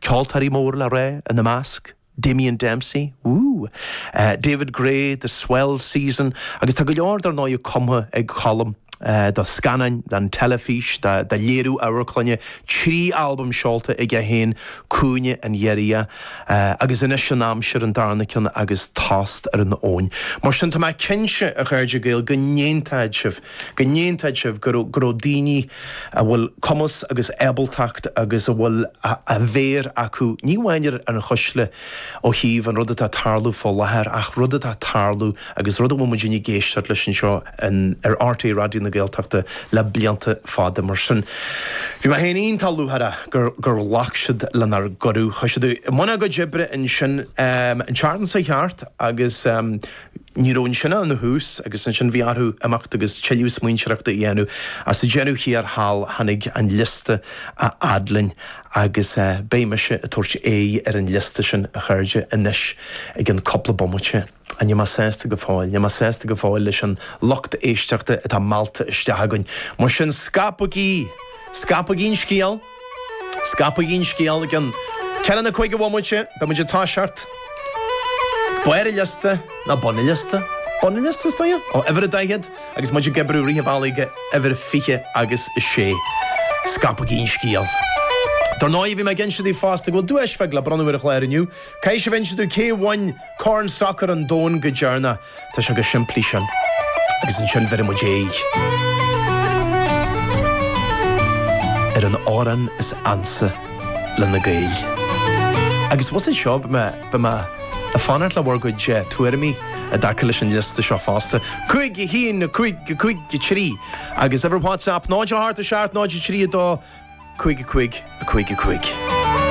ceoltóirí mór le rá, ina measc, Damien Dempsey, woo! David Gray, The Swell Season, agus tá go leor dár ndóigh cumtha ag Colm, do scannáin, don teilifís, do léiriú amharclainne, trí albam seolta aige féin, Cúinne an Ghiorria, Agus Anois an Aimsir an darna ceann agus Tost ar an Abhainn. Mar sin, tá mé cinnte, a chairde Gaeil, go n-aontóidh sibh! go n-aontóidh sibh go raibh daoine a bhfuil cumas agus ábaltacht agus a bhfuil a mhéar acu ní amháin ar an chuisle ó thaobh an rud atá ag tarlú fá láthair ach rud atá ag tarlú agus rud a bhfuil muid ag éisteacht leis anseo ar RTÉ Raidió na Gaeltachta le blianta fada. Mar sin bhí mé féin iontach lúcháireach gur gur ghlac siad lenár gcuireadh. Chuaigh siad i mbun a gcuid oibre ansin an tseachtain seo thart agus Ní raibh ansin ach ina thús agus ansin bhí orthu imeacht agus tuilleadh smaointeoireachta a dhéanamh is sa deireadh thiar thall tháinig an liosta a fhad linn agus beidh mise ag tabhairt aghaidh ar an liosta sin, a chairde, anois i gceann cúpla bomaite. Níl mé sásta go fóill. Níl mé sásta go fóill leis an lucht éisteachta atá meallta isteach againn? Mar sin, scaipigí! Scaipigí an scéal! Scaipigí an scéal. I gceann, ceann 5 bhomaite beidh muid ag toiseacht. Barr an liosta nó bun an liosta? Bun an liosta is dóiche. Ó uimhir a 40 agus muid ag oibriú rith an bhealaigh go uimhir 20 agus 6. Scaipigí an scéal. Dar ndóigh, bhí mé ag inse daoibh fosta go bhfuil duais bheag le bronnadh ar an chláir inniu. Caithfidh sibh inse domh cé bhain Corn Sacair an Domhain go deireanach. Tá sé chomh simplí sin. Agus ansin bhéarfaidh muid aghaidh ar an amhrán is ansa le na Gaeil. Agus abhus anseo beidh mé, beidh mé ag fanacht le bhur gcuid tuairimí i dtaca leis an liosta seo fosta. Cúig, a haon, a cúig, a cúig, a trí. Agus uimhir WhatsApp 0870325555.